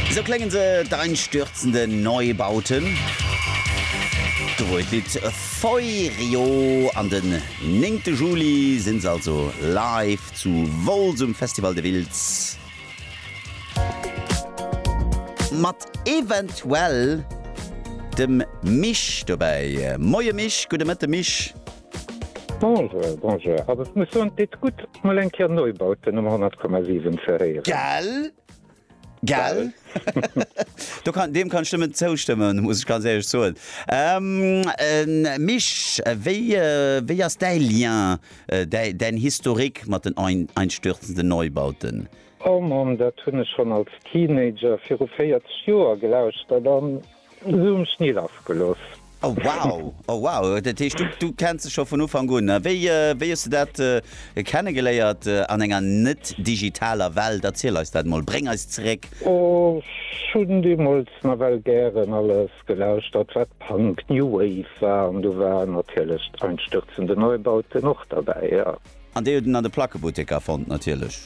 Esou kléngen se, d'einstürzenden Neubauten. Do wor et Lidd Feurio an den néngte Juli sinn se also live zu Wolz um Festival de Wiltz mat eventuell dem Misch dobäi. Moie Misch, gudde Mëtte Misch. Bonjour, bonjour, also ech muss soen et deet gutt mol eng Kéier Neubauten um 100,7 ze héieren. Gell? Gell? Do kann, deem kann ech nëmmen zoustëmmen, muss ech ganz éierlech soen. Misch, wéi, wéi ass däi Lien, däi, däin Historique mat den ein, einstürzenden Neubauten? Oh Mann, dat hunn ech schonn als Teenager viru 40 Joer gelauschtert an Sou um Schni lass geloss. Oh wow, oh wow, dat heescht du du kenns se scho vun Ufank un. A wéi wéi hues de dat kenne geléiert an enger net digitaler Welt? Erziel eis dat mol, bréng eis zeréck. Oh, ech hunn deemools nawell gären alles gelauschtert wat Punk, New Wave war an do war natierlech d'Einstürzende Neubauten och derbäi, jo. An déi huet en an de Plackebutteker fonnt natierlech.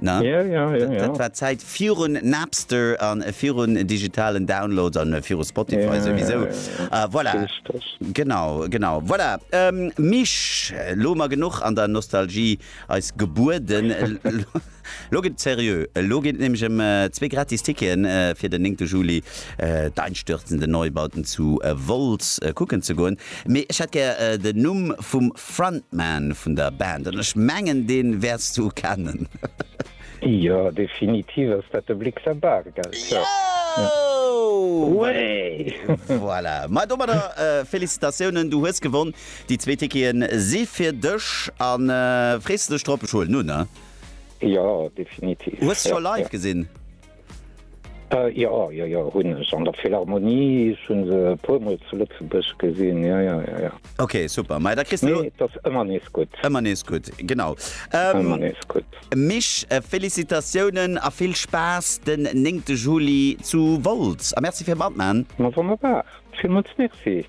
Dat war d'Zäit virun Napster an virun digitalen Downloads an viru Spotify souwisou. Voilà, genau, genau. Voilà, Misch, lo mar genuch an der Nostalgie eis gebueden. Lo gëtt et seriö, elo geet et nämlech ëm zwee gratis Ticketen fir den 9 Juli d'einstürzende Neubauten zu Wolz kucken ze goen. Mee ech hätt gär den Numm vum Frontman vun der Band an ech mengen deen wäerts du kennen. Jo definitiv ass dat de Blick sa Bargeld voilà mais domadder Félicitatiounen du hues gewonn déi zwee Ticketen si fir dech an frees de dech drop? Ech huelen un ne? Jo definitiv. Hues se scho live gesinn? Äh jo, jo, jo, hunn ech. An der Philharmonie, ech hunn se e puer Mol zu Lëtzebuerg gesinn, jo, jo, jo, jo. Ok, super. Mei da kriss de lo. Nee, et ass ëmmer nees gutt. Ëmmer nees gutt, genau. Ëmmer nees gutt. Misch, Félicitatiounen a vill Spaass den 9 Juli zu Wolz a Merci fir matman. Ma wonnerbar, villmools Merci.